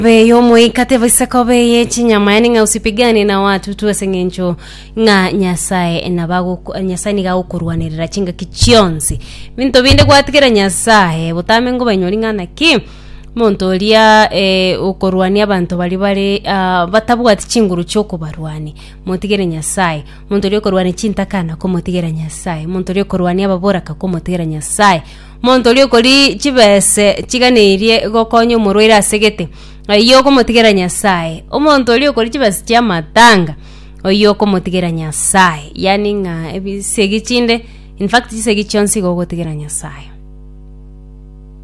Be y'omoika tebisa kobe ye chinyama yani ng'a usipigane na watu tu ase ng'encho ng'a Nyasaye nabago- Nyasaye niga agokorwanerera chingaki chionsi. Binto binde gwatigera Nyasaye botame ngobanyori ng'a naki monto oria eh, okorwania abanto baria bare ah, batabwati chinguru chiokobarwania, motigere Nyasaye. Monto oria okorwania chintakana, komotigera Nyasaye. Monto oria okorwania ababoraka, komotigera Nyasaye. Monto oria okori chibese chiganeirie gokonya omorwaire ase gete, oyio okomotigera Nyasae. Omonto oria okori chibese chia matanga, oyio okomotigera Nyasae. Yaani ng'a ebisegi chinde, in fact chisegi chionsi igo ogotigera Nyasae.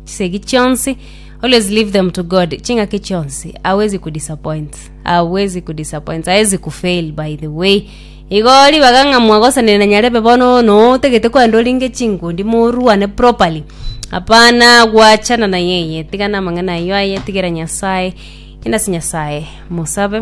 Chisegi chionsi, always leave them to God, ching'aki chionsi, hawezi ku disappoint, hawezi ku disappoint, hawezi ku fail by the way. Igo ribaga ng'a mwagosanerana nyarebe bono no otegete kwenda orenge chinkundi morwane properly hapana gwachana na yeye tigana amang'ana ayio aye tigera nyasaye enda ase nyasaye mosabe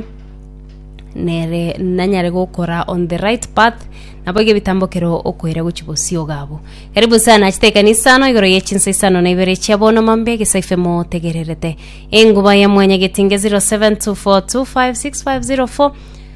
nere nanyare gokora on the right path nabo iga ebitambo kero okoira gochi bosio ogabo karibu sana achete ekanisa ano igoro ye chinsa isano na ibere chia bono mambe gesa ife motegererete enguba ya mwanya getinge 0724256504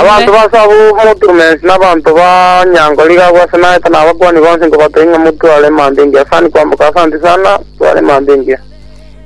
Abanto b'aase abwo moturumense nabanto ba nyango nigo agwo ase naete, na abakuani bonsi nkobatebia ng'a motware emambia engiya sani kwamboka ase anti sana, tware emambia engiya.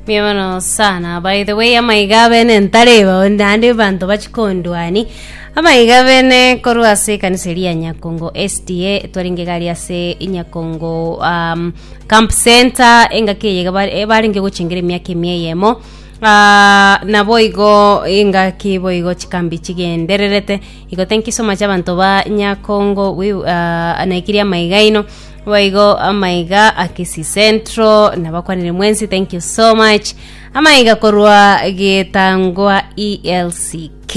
Mbuya mono sana by the way amaiga abene ntareba naende banto bachikondwani amaiga abene korwa ase ekanisa eria ya nyakongo sda twarenge gari ase nyakongo um, camp center engaki eye bare- eh, barenge gochengera emiaka emia eyemo Aa, naboigo engaki boigo chikambi chigendererete, igo tenkisoma chiabanto ba Nyakongo wi- aa, naikiri amaiga aino, boigo amaiga a Kisii Central, nabakwanire mwensi thank you so much, amaiga korwa Gitangwa ELCK.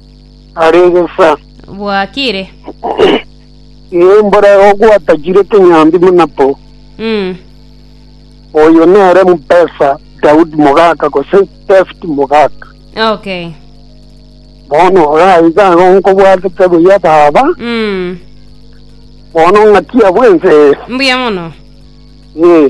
arenge nsa. Bwakire. Ee, mbore ogwatachire kenyambi buna po. Mm. Oyo nere mpesa Daudi mogaka gose David mogaka. Okay. Bono oraye iga igo nkobwatete buya baba, Mm. bono ng'akia bwense. Mbuya mono. Ee.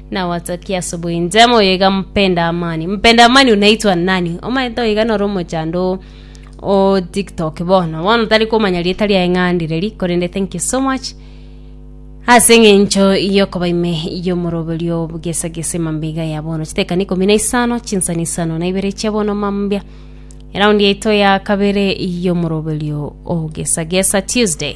Nawatakia asubuhi njema oyo iga mpenda amani mpenda amani unaitwa nani omaete oiga noro omochando o tiktok bono bono tari komanya rieta riaye ng'andi reri korende thank you so much ase eng'encho yokoba ime yomoroberio bugesa gesa emambia iga ya bono chitekani ikomi na isano chinsani isano na ibere chia bono mambia eraundi yaito ya kabere yomoroberio o gesa gesa tuesday